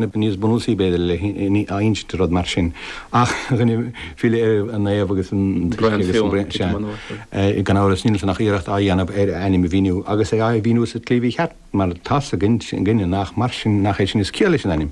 Níos bunúsaí, b'fhéidir, le n-insint, rud mar sin, ach rinne file ar an naomh agus an t-uisce agus an braon, sea, gan amhras, níl ansin ach iarracht á dhéanamh ar a ainm a mhíniú, agus é á mhíniú sa tslí mhícheart, mar tá's againne nach mar sin, nach é sin is ciall leis an ainm.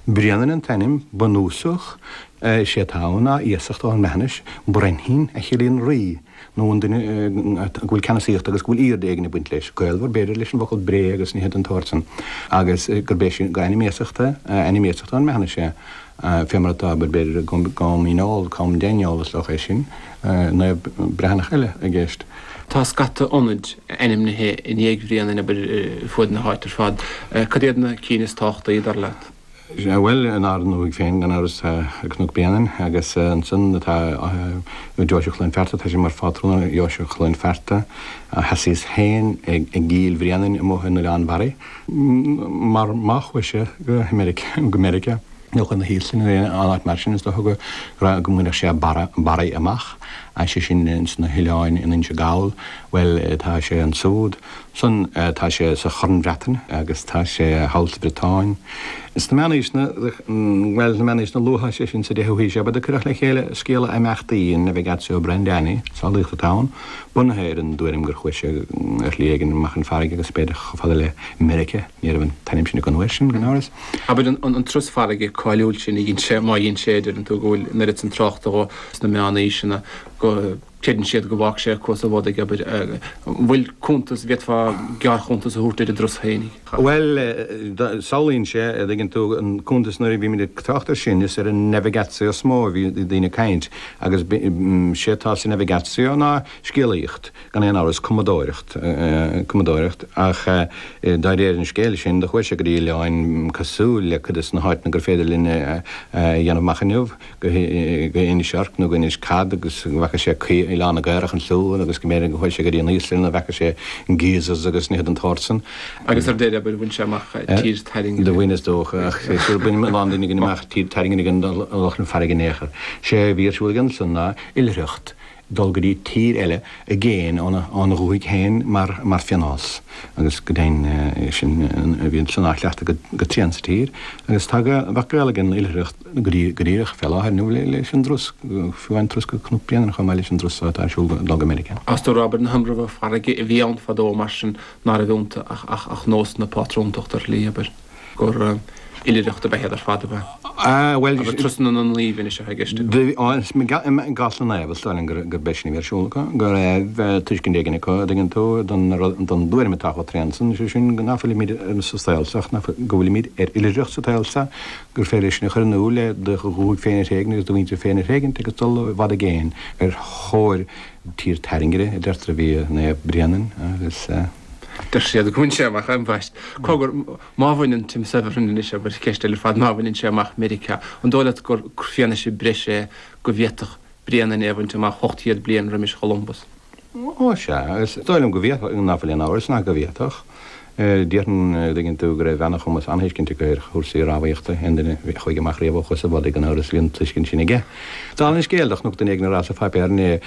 Bréanainn an t-ainm bunúsach, sé atá ann ná iasacht ón mBreathnais, Brenhin, a chiallaíonn rí. nó an duine go bhfuil ceannasaíocht agus go bhfuil airde éigin ag baint leis, gaolmhar, b'fhéidir, leis an bhfocal 'bré' agus nithe den tsórt san, agus gurb é sin, gur ainm iasachta, ainm iasachta ón mBreathnais é, fé mar atá, b'fhéidir, i gCom Dhíneol, Com Dhaineol, is dócha é sin, naomh Breathnach eile i gceist. Tá scata ionaid ainmnithe i ndiaidh Bhréanainn, abair, ar fuaid na háite ar fad. Cad iad na cinn is tábhachtaí, dar leat? Bhuel, in ár ndúthaigh féin, gan amhras, tá Cnoc Bréanainn, agus ansin atá Deoise Chluain Fearta, tá sé mar phátrún ar Dheoise Chluain Fearta. Sheasaíos féin i gCill Bhréanainn amuigh in Oileán Bharraigh, mar má chuaigh sé go Meiriceá, nó chun na hÍoslainne nó aon áit mar sin, is dócha go raibh, go mbainfeadh sé Barraigh amach, sé sin, sna hoileáin in Inse Gall. Bhuel, tá sé ansúd. son, tá sé sa Chorn Bhreatain agus tá sé thall sa Bhriotáin. Sna Meánaoiseanna, bhuel, sna Meánaoiseanna Luatha, sé sin, sa 10ú haois, ab ea do cuireadh le chéile scéal a imeachtaí an Navigatio Brendani, samhlaíocht atá ann, bunaithe ar an dtuairim gur chuaigh sé ar shlí éigin amach chun farraige agus b'fhéidir chomh fada le Meiriceá, ní raibh an t-ainm sin acu an uair sin, gan amhras. Abair, an turas farraige cáiliúil sin a dhein sé, má dhein sé, deireann tú go bhfuil an oiread san tráchta dhó sna Meánaoiseanna go. Creideann siad go bhfágfadh sé acu sa bhád, abair. An bhfuil cuntas, bhféadfá gearrchuntas a thabhairt ar an dturas féinig? Bhuel, samhlaíonn sé, a' dtuigeann tú, an cuntas nuair a bhímid ag trácht air sin, is ar an navigatio is mó a bhí daoine ag caint agus sé atá sa navigatio ná scéalaíocht, gan aon amhras, cumadóireacht, cumadóireacht ach do réir an scéil sin do chuaigh sé go dtí oileáin cosúil le cuid de na háiteanna gur féidir linn a dhéanamh amach inniu. go Inis Orc nó go Inis Cat agus go bhfeaca sé Oileán na gCaorach ansúd agus go mb'fhéidir gur chuaigh sé go dtí an Íoslainn a bhfeaca sé geysers agus nithe den tsórt san. Agus ar deireadh abair, bhain sé amach Tír Tairngire. Do bhain is dócha, ach is dócha gur bhain a lán daoine againn amach Tír Tairngire gan dul amach chun farraige in aon chor. Sé a bhí ar siúl aige ansan ná oilithreacht, dul go dtí tír eile i gcéin óna dhúthaigh féin mar phionós agus go deimhin sin a bhí san á chleachtadh go tréan sa tír agus tá go maith gaol ag an oilithreacht go díreach fé láthair nó leis an dturas, fiú an turas go Cnoc Bréanainn chomh maith leis an dturas atá ar siúl dul go Meiriceá. Is dócha, abair, na hIomramha farraige a bhí ann fadó mar sin ná raibh iontu ach nós na pátrúntachta ar shlí, abair? gur oilithreacht ab ea ar fad ab ea turasanna na naomh anois atá i gceist acu. Ó, i gcás na naomh, is dóigh liom gur b'é sin a bhí ar siúl acu, go raibh tuiscint éigin acu, a' dtuigeann tú, don dtuairim atá chomh tréan san, is é sin nach bhfuilimid sa tsaol seo, go bhfuilimid ar oilithreacht sa tsaol seo, gur féidir é sin a chur in iúl le do dhúthaigh féin a thréigint agus do mhuintir féin a thréigint agus dul i bhfad i gcéin ar thóir tír tairngire, a deirtear a bhí Naomh Bréanainn agus. Deir siad gur bhain sé amach, ambaist. Cogar, má bhaineann, Tim Severin anois ag cur ceist eile ar fad, má bhaineann sé amach Meiriceá, an dóigh leat gur fianaise breise é go bhféadfadh Bréanainn é a bhaint amach 800 bliain roimis Cholumbus? Ó, sea, is dóigh liom go bhféadfadh, nach bhfuil aon amhras ná go bhféadfadh. Déarfainn, an dtuigeann tú go raibh an-chumas, an-thuiscint acu ar chúrsaí rámhaíochta, aon duine a chuaigh amach riamh ó Chuas an Bhodaigh gan amhras, bhí an tuiscint sin aige. Dála an scéil, do chonac duine éigin á rá sa pháipéar inné,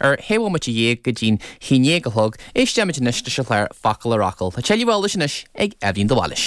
Ar dhá bhomaite dhéag go dtí'n haon déag a chlog, éistfimid anois leis an chlár Focal ar Fhocal. Tá tuilleadh eolais anois ag Eibhlín de Bhailís.